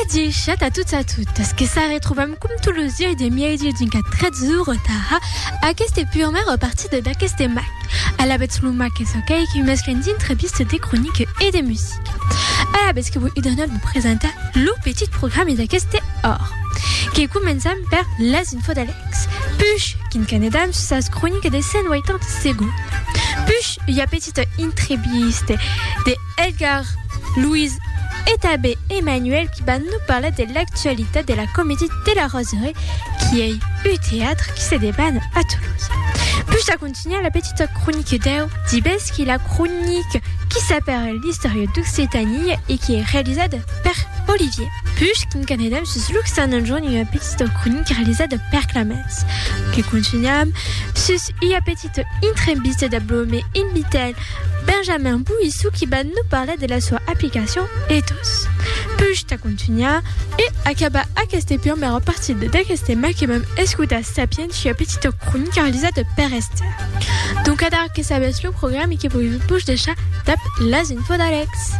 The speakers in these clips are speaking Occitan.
Adichat a tots a totes, que se retrobam com tous los dies de mièdi d'un quart 13 de retard aquesta prumèra partida d'aqueste mac. Alavetz lo mac es ok que mesclen d'entrevista, de cronica e de musica. Alavetz que vos idonat vos presentar lo petit programa d'aqueste or. Que començam per las infos d'Alex. Push, quin canedam sus sas cronica de 180 segonds. Push, ua petita entrevista de Edgar, Louise e tanben Emmanuel qui van nos parlar de l'actualitat de la Comédie de la Roseraie qui ei un teatre qui se deban a Tolosa. Pus a continuar la petita cronique deu dibesqui, la cronique qui s'aparèl l'Istòria d'Occitania e qui ei realizada per Olivier. Pus quincanedam sus l'occitan enjorn ua petita cronique realizada per Clemens. Que continuam sus ua petita. Cette intremvista de Blome invitel Benjamin Bouissou qui ba nou parlar de la soa aplicacion ethos. Push ta contunhar e acabar aqueste pirmèr a partir de d'aqueste tema que vam escotar Sapiens ua petita cronica realizada per Esther. Donc adar que sabètz lo programa e que voi vos deishar dab las infos d'Alex.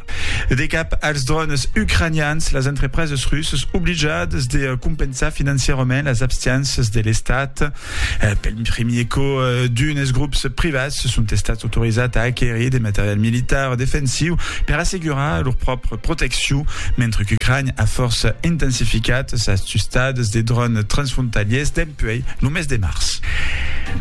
De cap als drònes ucranians, las entrepreses russas oblijadas de compensar financièrament las abstiénças de l'Estat. Pel primier còp, d'unes grops privats son estats autorizats a aquerir de material militar defensiu per assegurar lor pròpria proteccion, mentre qu'Ucrània a fòrça intensificat sas tustadas de drònes transfrontalièrs dempuèi lo mes de març.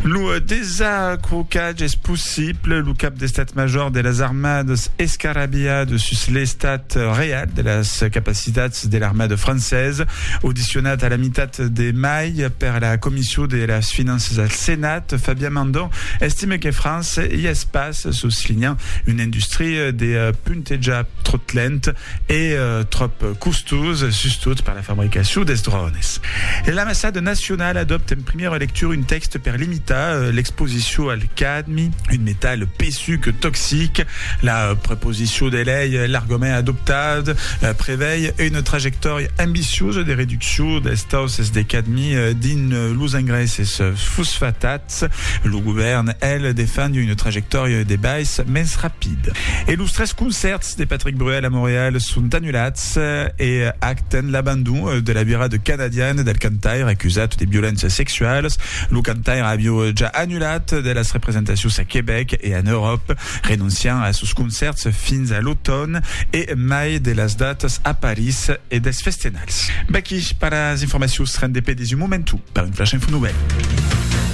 Lo desacrocament Qu'es pas possible, lo cap d'Estat Major de las Armadas escarrabilha de sus l'estat real de las capacitats de l'armada francesa. Audicionat a la mitat de mai per la Comission de las Finanças al Senat, Fabien Mandon estime que França i es pas, soslinhant una industria de puntejar tròt lent e tròp costosa, sustot per la fabricacion dels drònes. L'ambassada nacionala adòpta en primièra lectura un tèxte per limitar Tà l'exposicion al cadmi, un metal pesuc toxic, la proposicion de lei, l'argument adoptat, prevei una trajectòria ambiciosa de reduccion dels tausses de cadmi dins los engrèisses fosfatats. Lo govèrn, el, defend una trajectòria de baissa mens rapida. E los tres concèrts de Patrick Bruel a Montreal son anulats e acten l'abandon de la virada canadiana del cantaire acusat de violéncias sexualas Lo cantaire avió ja annulat de las representacions a Quebec e en Euròp, renonciant a sos concèrts fins a l'automn e mai de las datas a París e dels festenals. Vaqui per las informacions rendepedis un momentu per un flash info novèl.